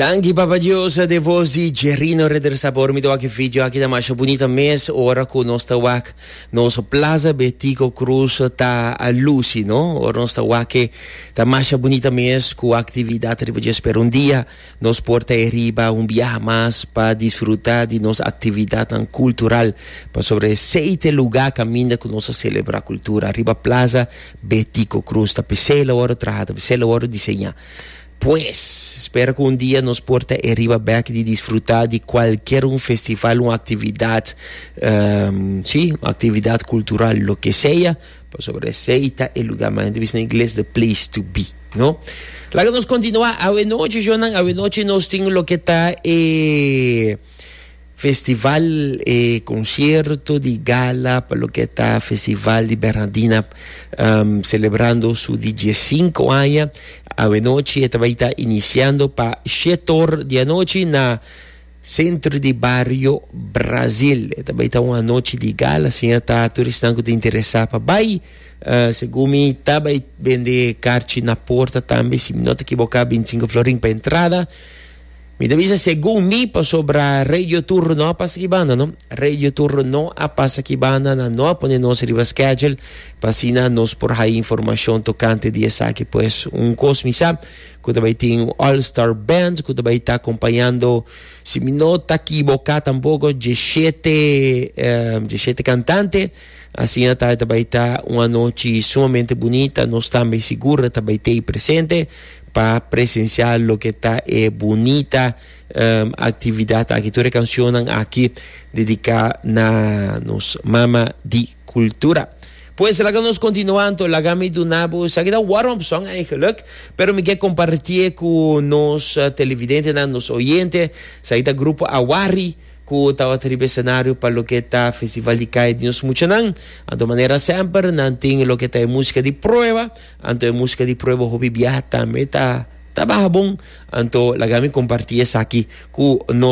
Danki Papa Dios de voz di Jerino Redresa por mi wak video aki ta masha bonita mes ora ku nos ta wak nos plaza betico cruz ta a lusi no ora nos ta wak ta masha bonita mes ku actividad riba dje spera un dia nos por ta riba un biaha mas pa disfruta di nos actividadnan cultural pasobra esei ta e lugar kaminda ku nos ta celebra cultura riba plaza Be tiko krus ta p'esei la wòrdu traha, ta p'esei la wòrdu diseñá. Pues, spera ku un dia nos por ta e riba bèk di disfrutá di kualkier un festival, un aktividat, sí, un aktividat kultural, loke sea, pasobra esei ta e lugá, men hende bisa na ingles, the place to be, no? Laga nos kontinuá, awe nochi, shonnan, awe nochi nos tin loke ta e. Festival e concierto di gala pa lo que ta Festival di Bernardina um, celebrando su di diezcinco aña avenochi e tabaita iniciando pa shetor di anochi na centro di barrio Brazil e tabaita un anochi di gala si ta turistan ku ta interesa pa bai uh, según mi tabai bende karchi na porta tambe si mi no ta ekiboka 25 florin pa entrada Mi ta bisa segun mi pasobra Radio Tur no a pasa ki banda no. Radio Tur no a pasa ki banda nan no a pone nos riba schedule pa asina nos por haya informacion tocante di esaki pues un cos mi sa cu ta bay tin un all star band cu ta bay ta acompañando si mi no ta equivoca tampoco diecisiete eh, diecisiete cantante asina ta ta bay ta un anochi sumamente bonita nos tambe segura ta bay tay presente Pa presenciá loke ta e bunita actividad aki, tur e cancionnan aki dedicá na nos Mama di Cultura. Pues laga nos continuá anto, laga mi duna bo esaki ta un warm up song eigenlijk, pero mi ke compartié cu nos televidentenan, nos oyente, esaki ta grupo Awari cu tabata riba e scenario pa loke ta Festival di Calle di nos muchanan. Anto manera semper nan tin loke ta e musica di prueba, Anto e muska di prueba hopi biaha tambe ta ta baha bon. Anto laga mi comparti esaki cu no.